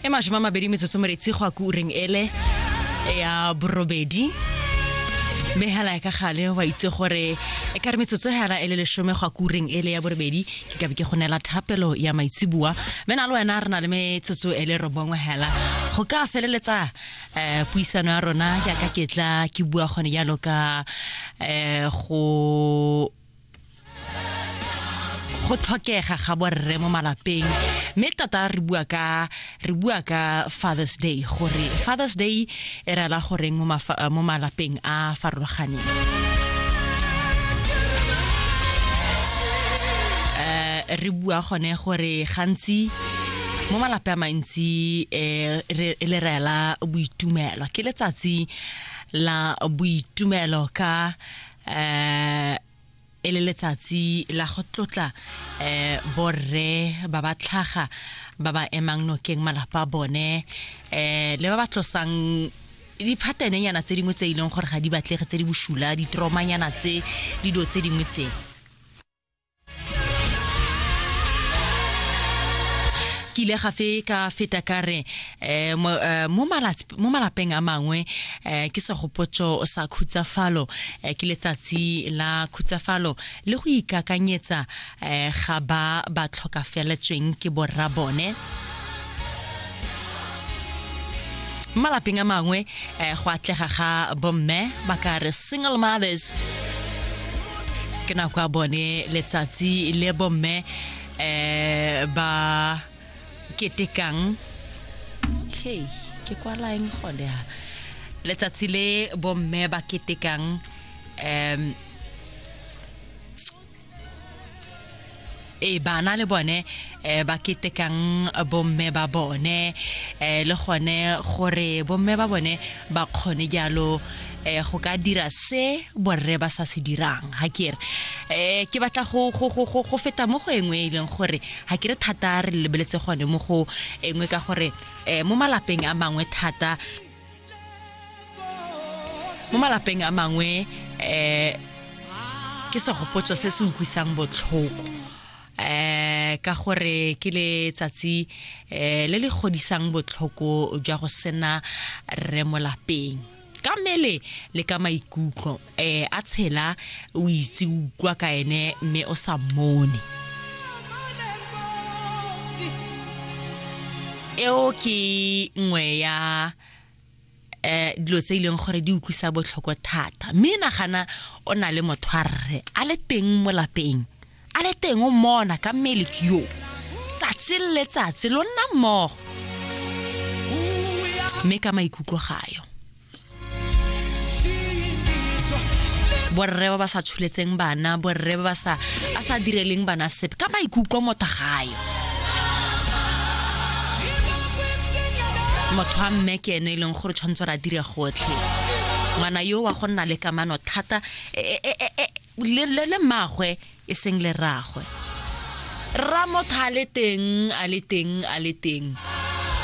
e masome a mabedi metsotso moretsi go a ko ureng ele ya borobedi mme hela ya ka gale wa itse gore e ka re metsotso hela e le lesome go a ko ureng ele ya borobedi ke ka be ke go neela thapelo ya maitsibua mme na le wena re na le metsotso e le robongwe hela go ka feleletsa um puisano ya rona jaaka ke tla ke bua gone jalo ka um go go tlhokega ga borre mo malapeng mme tota re bua ka re bua ka father's day gore father's day e rela goreng mo malapeng a farologaneng eh, re bua gone gore gantsi mo malape a mantsi um le rela boitumelo ke letsatsi la boitumelo ka eh e le letsatsi la go tlotla eh borre ba ba tlhaga ba ba emang nokeng malapa bone eh le ba ba tlosang diphatenenyana tse dingwe tse e leng gore ga di batlege tse di bosula ditromanyana tse dido tse dingwe tse ke ile gafe ka feta ka re eh, eh, mo malapeng a mangwe eh, ke segopotso sa khutsafalo ke letsatsi la khutsafalo le go ikakanyetsa ga ba ba tlhokafeletsweng ke borra bone malapeng a mangwe eh, go atlega ga bomme ba ka re single mothers ke nako ya bone letsatsi le bomme eh ba ketekang okay ke kwalaeng gone ya letsatsi le bomme ba ketekang um e bana le bone eh, ba ketekang bomme ba bone eh, le gone gore bomme ba bone ba kgone jalo eh, go ka dira se borre ba sa se dirang ha ke re eh, ke batla go, go, go, go, go feta mo go engwe e leng gore ha ke re thata re lebeletse gone mo go engwe ka gore eh, mo malapeng a mangwe thata mo malapeng a mangwe um ke segopotso se se utlwisang botlhoko um ka gore ke letsatsi um le le godisang botlhoko jwa go sena rre molapeng ka mmele le ka maikutlo eh a tshela o itse o utlwa ka ene mme o sa mmone eo ke nngwe ya eh dilo tse e leng gore di utlwisa botlhoko thata mme nagana o na le motho a rre a le teng mo lapeng a le teng o mona ka mmele ke yo tsatsi le letsatsi lo nna mmogo mme ka maikutlo gayo borre ba ba sa tsholetseng bana borre ba ba sa a sa direleng bana sepe ka maikutlo motho gayo motho wa mme ke ene e leng gore tshwanetse re a dire gotlhe ngwana yo wa go nna le kamano thata e, e, e, le mmagwe e seng le rragwe rra motho a le teng a le teng a le teng